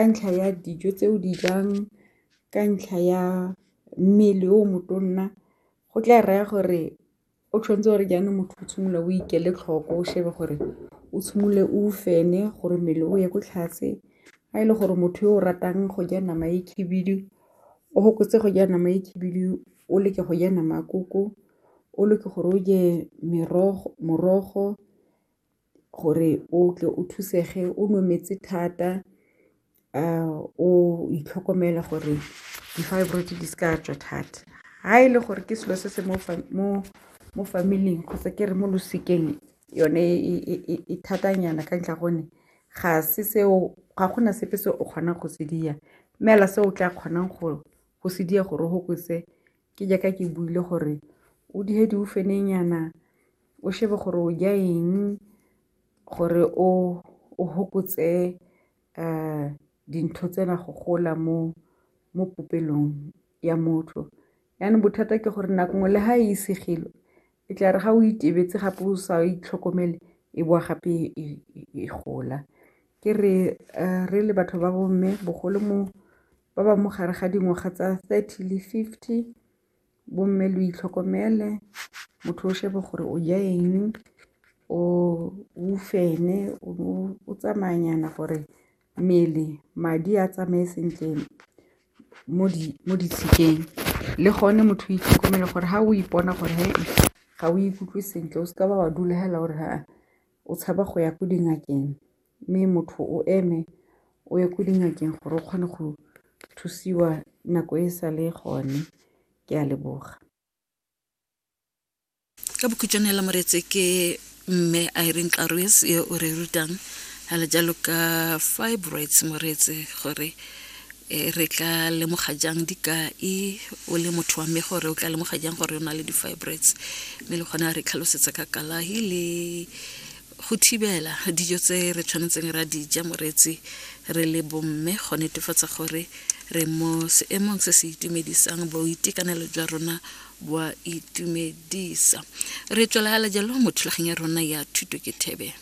ka ntlha ya dijo tse o di jang, ka ntlha ya mmele o motonna go tla raya gore o tshwanetse gore jaanong motho o tshwanetse o ikele tlhoko o shebe gore o tshwanetse o fenye gore mmele o ye ko tlase, ga e le gore motho yo o ratang go ja nama e khibidu o fokotse go ja nama e khibidu o leke go ja nama ya koko, o leke gore o je morogo. gore o tle o thusege o nwe metsi thata o itlhokomele gore di-fibroid di se ka tswa thata. Ha e le gore ke selo se se mo family-ing kgotsa ke re mo losikeng yone e thata nyana ka ntlha ya gonne ga se seo ga gona sepe se o kgonang go se dia mme fela se o tla kgonang go se dia gore o fokotse Ke jaaka ke buile gore o dihe diufenenyana, o shebe gore o ja eng gore o fokotse dintho tsena go gola mo mo popelong ya motho. Jaanong bothata ke gore nako nngwe le ga e segilwe e tla re ga o itebetse gape o sa itlhokomele e bowa gape e gola. Ke re re le batho ba bo mme bogolo mo ba ba mo gare ga dingwaga tsa thirty le fifty, bo mme lo itlhokomele, motho o shebe gore o ja eng, o fenwe, o tsamaya nyana gore mmele madi a tsamaye sentle mo ditshikeng. Le gone motho o itlhokomele gore ha o ipona gore ga o ikutlwe sentle o seke wa dula fela o re o tshaba go ya ko dingakeng. mme motho o eme o ye ko dingakeng gore o kgone go thusiwa nako e sa le gone ke a leboga ka bokhutšwane hela moretse ke mme irene karoes ye o re rutang gale jalo ka fibroids moretse gore e, re tla lemoga jang dikai o le motho wa mme gore o tla lemoga jang gore o na le di-fibroids mme le kgona re tlhalosetsa ka kalahi le go thibela dijo tse re tshwanetseng ra dija moreetsi re le bomme go netefatsa gore re mo seemong se se itumedisang boitekanelo jwa rona bwa itumedisa re tswelagala jalo mo thulaganyo ya rona ya thuto ke thebe